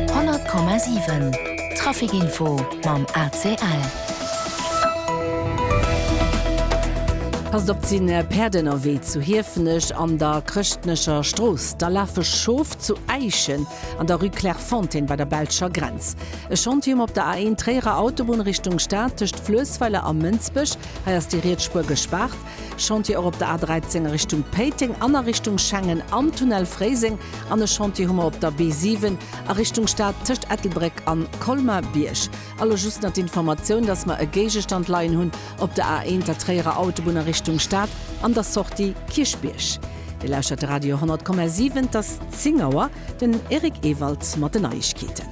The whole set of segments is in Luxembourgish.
100,7 Trafic Info mam ACL. Passt op, 't sinn Päerd ënnerwee zu Hiefenech an der Chrëschtnecher Strooss, da lafe Schof zu Äischen an der Rue Clairefontaine bei der belscher Grenz. E Chantier um op der A1 Tréierer Autobunn Richtung Stad tëscht Fluessweiler a Mënsbech, hei ass déi riets Spuer gespaart. Chantier och op der A 13 a Richtung Péiteng an a Richtung Schengen am Tunnel Fréiseng an e Chantier hu mer op der B 7 a Richtung Stad tëscht Ettelbréck an Colmar-Bierg. A lo just nach d'Informatioun, dass mer e Géigestand leien hunn op der A 1, der Tréierer Autobunn a Richtung Stad an der Sortie Kierchbierg. Dir lauschtert de Radio 100,7, et ass 10 Auer. Den Eric Ewald mat den Neiegkeeten.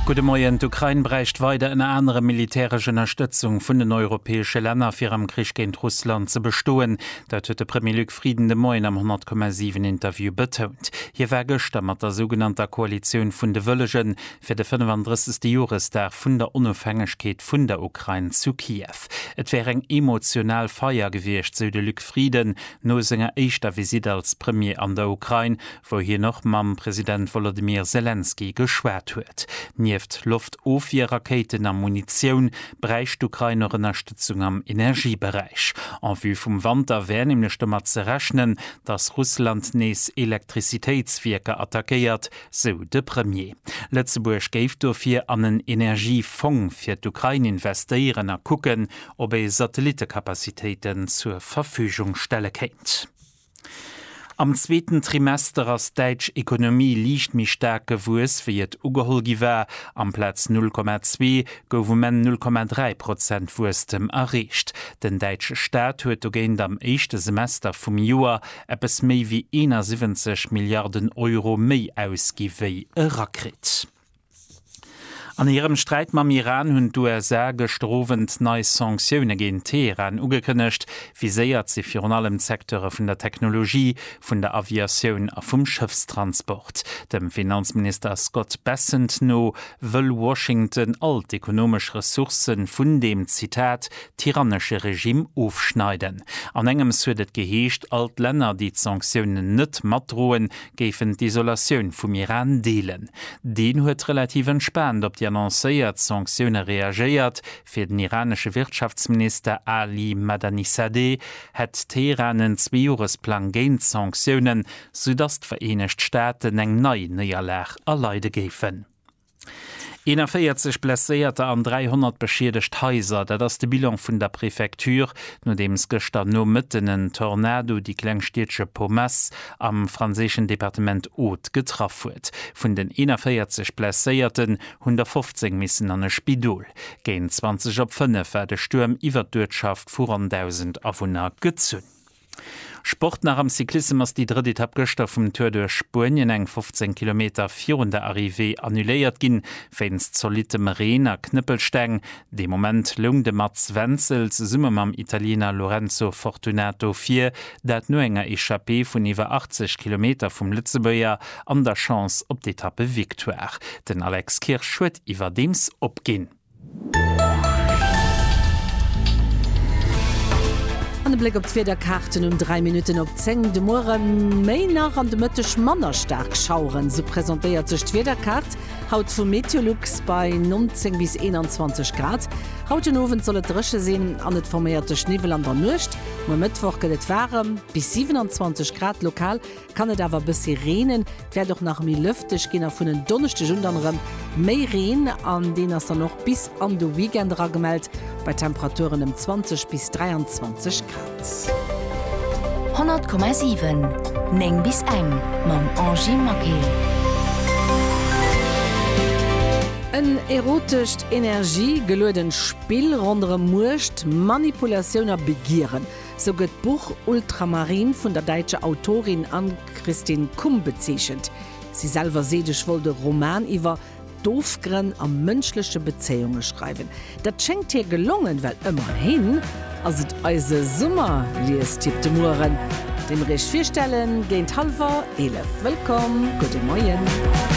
Gudde Moien. D'Ukrain bräicht weider ënner anerem militäresch Ënnerstëtzung vun den europäesche Länner, fir am Krich géint Russland ze bestoen. Dat huet de Premier Luc Frieden de Moien am 10,7 Interview betount. Hie war gëschter mat der sougenannter Koalitioun vun de Wëllegen fir de 35. Joresdag vun der Onofhängegkeet vun der Ukrain zu Kiew. Et wär eng emotional Feier gewiescht, sou de Luc Frieden. No senger éischter Visitt als Premier an der Ukrain, wou hien och mam President Wolodymyr Selenskyj geschwat huet. Nieft Loftofwier-Rakéiten a Munitioun, bräicht d'Ukrain och Ënnerstëtzung am Energieberäich. En vue vum Wanter wär nämlech domat ze rechnen, datt Russland nees Elektrizitéitswierker attackéiert, sou de Premier. Lëtzebuerg géif dofir an en Energiefong fir d'Ukrain investéieren a kucken, ob ee Satellitekapazitéiten zur Verfügung stelle kéint. Am zweeten Trimester ass d'däitsch Ekonomie liicht méi staark gewuess, wéi et ugeholl gi war. Amplaz 0,2 gouf um Enn 0,3 Prozent Wuesstem erreecht. Den däitsche Staat huet dogéint am éischte Semester vum Joer eppes méi wéi 71 Milliarden Euro méi ausgi wéi erakritt. An hirem Sträit mam Iran hunn d'USA gëschter Owend nei Sanktioune géint Teheran ugekënnegt. Viséiert si virun allem d'Secteure vun der Technologie, vun der Aviatioun a vum Schëffstransport. Dem Finanzminister Scott Bessent no wëll Washington all d'ekonomesch Ressourcë vun deem, Zitat, tyrannesche Regimm ofschneiden. An engems huet et geheescht, all d'Länner, déi d'Sanktiounen net matdroen, géifen d'Isolatioun vum Iran deelen. Deen huet relativ entspaant op déi annoncéiert Sanktioune reagéiert. Fir den iranesche Wirtschaftsminister Ali Madanisadeh hätt Teheran en Zweejoresplang géint d'Sanktiounen, soudatt d'Vereenegt Staaten eng nei Néierlag erleide géifen. 41 Blesséierter an 300 beschiedegt Haiser, dat ass de Bilan vun der Prefecture, nodeems gëschter Nomëtten en Tornado déi kleng Stiedche Pomesse am franséischen Departement Aude getraff huet. Vun den 41 Blesséierten hunn der 15 missen an e Spidol. Géint 20 op 5 war de Stuerm iwwert d'Uertschaft vu ronn 1.000 Awunner gezunn. Sport nach am Cyclissem ass déi drëtt Etapp gëschter vum Tour duerch Spuenien, eng 15 Kilometer virun der Arrivée, annuléiert ginn, wéinst zolittem Reen a Knëppelsteng. De Moment loung de Mats Wenzel zesumme mam Italiener Lorenzo Fortunato vir, dat no enger Echappée vun iwwer 80 Kilometer vum Lëtzebuerger an der Chance op d'Etappevictoire. Den Alex Kirsch huet iwwerdeems opginn. An e Bléck op d'Wiederkaarten um 3 Minutten op 10. De Muere méi nach an de Mëtteg manner staark Schaueren, esou presentéiert sech d'Wiederkaart haut vu Meteolux bei 19 bis 21 Grad. Haut den Owend soll et dréche sinn an et forméiert sech Niwwel an der Nuecht um e Mëttwoch gëtt et waarem, bis 27 Grad lokal. Kann et awer e bëssi reenen, et wäert och nach méi lëfteg ginn a vun en Donneschdeg un dann erëm méi Reen an deen ass dann och bis an de Weekend era gemellt bei Temperaturen ëm 20 bis 23 Grad. 100,7 9 bis eng mam Angie Maquet. En erotescht, energie-geluedent Spill ronderëm Muecht, Manipulatioun a Begieren. Sou gëtt d'Buch Ultramarine vun der däitscher Autorin Ann-Christine Kumb bezeechent. Si selwer seet, Ech wollt e Roman iwwer d'Ofgrënn a mënschleche Bezéiunge schreiwen. Dat schéngt hir gelongen, well ëmmerhin ass et eise Summer-Liestipp de Mueren. Deem Iech virstellen géint hallwer 11. Wëllkomm, gudde Moien.